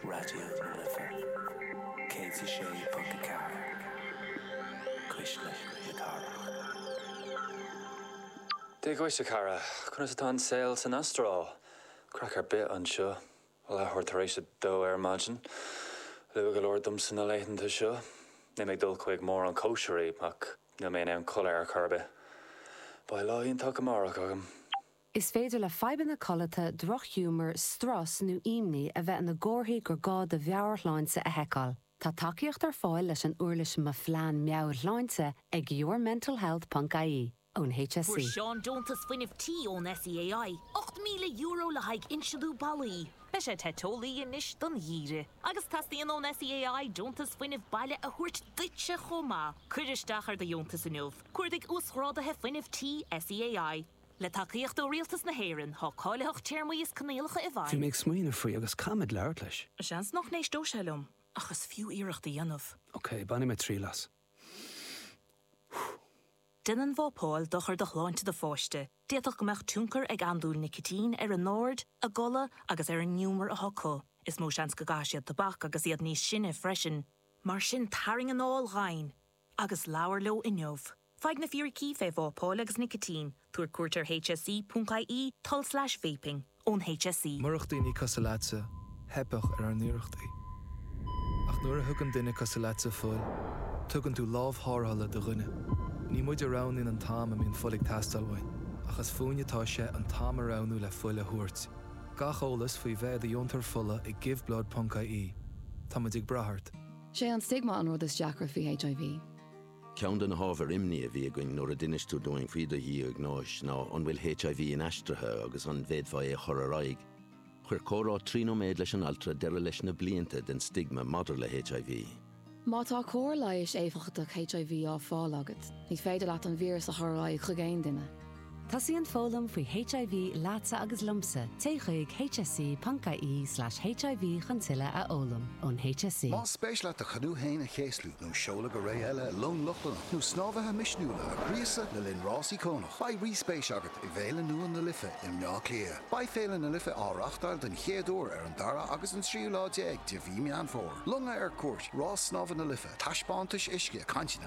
Raidió na Life 106.4, Cuisle na Cathrach. Dia dhuit, a chara. Conas atá an saol san Astráil? Craic ar bith anseo. Leathuair tar éis a dó ar maidin. Luath go leor domsa na laethanta seo. Níl mé ag dul chuig mórán cóisirí, ach níl mé in ann codladh ar chor ar bith. Beidh lá iontach go amárach agam. Is féidir le fadhbanna codlata, drochghiúmar, strus nó imní a bheith ina gcomharthaí gur gá do mheabhairshláinte a sheiceáil. Tá tacaíocht ar fáil leis an uirlis Mo Phlean Meabhairshláinte ag yourmentalhealth.ie ón HSE. Fuair Seán deontas fuinnimh tí ón SEAI, €8,000 le haghaidh inslithe ballaí. Beidh sé te teolaí anois don gheimhreadh. Agus teastaíonn ón SEAI deontas fuinnimh baile a thabhairt duitse chomh maith. Cuir isteach ar do dheontas inniu. Cuardaigh Uasghráduithe Fuinnimh Tí SEAI. Le tacaíocht ó Rialtas na hÉireann, tá cáilitheacht téarmaí is coinníollacha i bhfeidhm. Bhí mé ag smaoineamh faoi agus caithfimid labhairt leis. Seans nach n-éistfidh sé liom, ach is fiú iarracht a dhéanamh. Ok, bainfidh mé triail as. Déanann vapáil dochar do shláinte do pháiste, d'fhéadfadh go mbeadh tionchar ag andúil nicitín ar a n-aird, a gcodladh agus ar an ngiúmar atá acu. Is mó seans go gcaithfidh siad tobac agus iad níos sine freisin. Mar sin tarraing anáil dhomhain! agus labhair leo inniu. Faigh na fíricí fé vápáil agus nicitín, tabhair cuairt ar hse.ie tulslais vaping, ón hse. Murach daoine cosúil leatsa, theipfeadh ar ár n-iarrachtaí. Ach nuair a thugann duine cosúil leatsa fuil, tugann tú lámh tharrthála do dhuine. Ní muid a roghnaíonn an t-am a mbíonn fuil ag teastáil uainn, ach is fúinn atá sé an t-am a roghnú le fuil a thabhairt. Gach eolas faoi bheith i do dheontóir fola ag Give Blood ponc IE. Tá muid ag brath ort. 'Sé an stigma an rud is deacra faoi HIV. Ceann de na hábhair imní a bhí againn nuair a d'inis tú dúinn faoi do dhiagnóis ná an bhfuil HIV inaistrithe agus an bhféadfá é a chur ar aghaidh. Chuir comhrá trí nóiméad leis an altra deireadh leis na blianta den stigma maidir le HIV. Má tá cóir leighis éifeachtach HIV á fáil agat, ní féidir leat an víreas a chur ar aghaidh chuig aon duine. Tosaíonn foghlaim faoi HIV leatsa agus liomsa, téigh chuig hse.ie slash HIV chun tuilleadh a fhoghlaim. Ón HSE. Más spéis leat do chanú fhéin a chéaslú, nó seoladh go ré eile i long Lochlannach, nó snámhaithe misniúla a ghríosadh le linn rás íocónach, beidh rí-spéis agat i bhféile nua na Life i mBleá Cliath. Beidh Féile na Life á reáchtáil den chéad uair ar an dara agus an tríú lá déag de mhí Meán Fómhair. Longa ar cuairt, rás snámha na Life, taispeántais uisce, cainteanna.